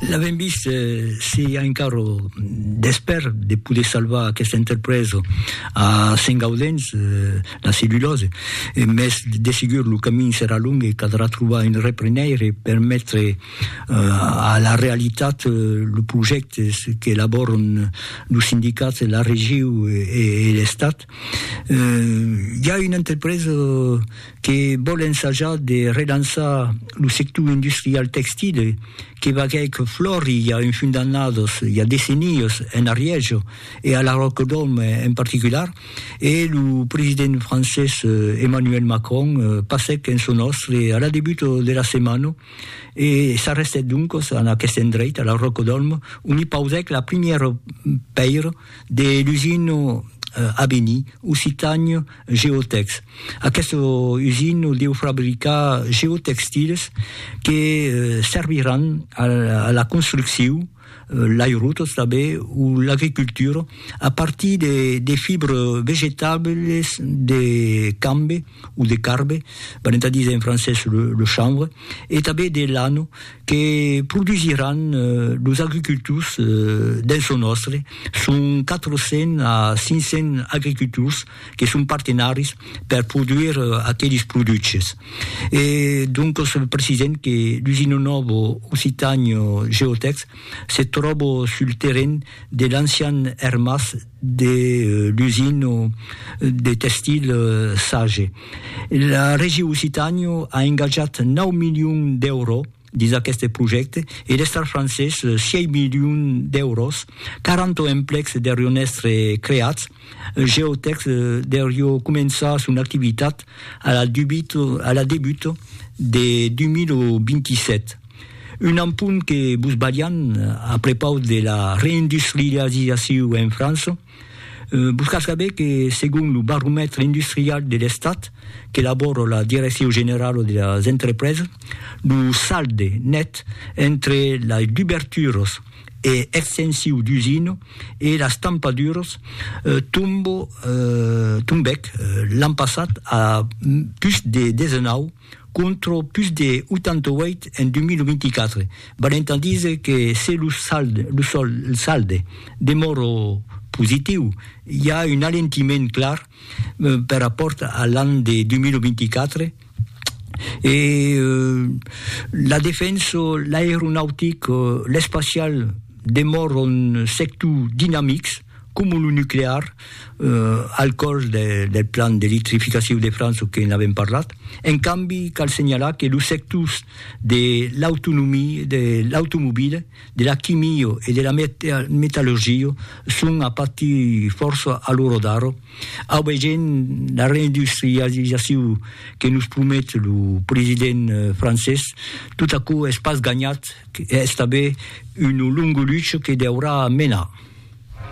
L'avèm vist, se i a encara d'espèr de poder salvar aquesta entrepresa a Sentgaudens, la cellulòsa, mès de segur lo camin serà long e caldrà trobar un reprenèire per metre a la realitat los projèctes qu'elabòran los sindicats, la regiu e l'Estat. Hi a una entrepresa que vòl ensajar de relançar lo sector industrial textil que vagèc flòri i a un fum d'annadas, i a decennias, en Arièja e a la Ròcadòm en particular, e lo president francés Emmanuel Macron passèc en son òstre a la debuta de la setmana e s'arrestèt doncas en aqueste endreit, a la Ròcadòm, ont i pausèc la primièra pèira de l'usino Abeni Occitània Geotex. Aqueste usino deu fabricar geotextiles que serviràn a la construcciu, l'airotos tanben o l'agricultura a partir de fibres vegetables de cambe o de carbe, venent a díser en francés le chanvre, e tanben de lano que produsiràn los agricultors dens lo nòstre, son 400 a 500 agricultors que son partenaris per produire aqueles produches. E doncas precisèm que l'usina nòva Occitània Geotèx se tròba sul terren de l'ancian ermàs de l'usina de tèxtil Sage. La Region Occitània a engatjat 9 milions d'èuros dins aqueste projècte e l'Estat francés 6 milions d'èuros, 40 emplecs deurion èstre creats, Geotex deurió començar son activitat a la debuta de 2027. Un ampun que vos balhan a prepaus de la reindustrializaciu en França, vos cal saber que segon lo baromètre industrial de l'Estat qu'elabora la Direcciu Generala de las Entrepresas, lo salde net entre las duberturas e extensiu d'usina e las tampaduras tombèc l'an passat a pus de 19 contra pus de 88 en 2024, valent a díser que se lo salde demòra positiu, i a un alentiment clar per rapòrt a l'an de 2024, e la defensa, l'aeronautic, l'espacial demòran sectors dinamics. Coma lo nuclear, al còrs del plan d'electrificaciu de França que n'avèm parlat. En cambi, cal senhalar que los sectors de l'autonomia, de l'automobila, de la quimia e de la metallurgia son a patir fòrça a l'ora d'ara, aubegent la reindustrializaciu que nos promet lo president francés. Tot aquò es pas ganhat, es tanben una longa lucha que deurà menar.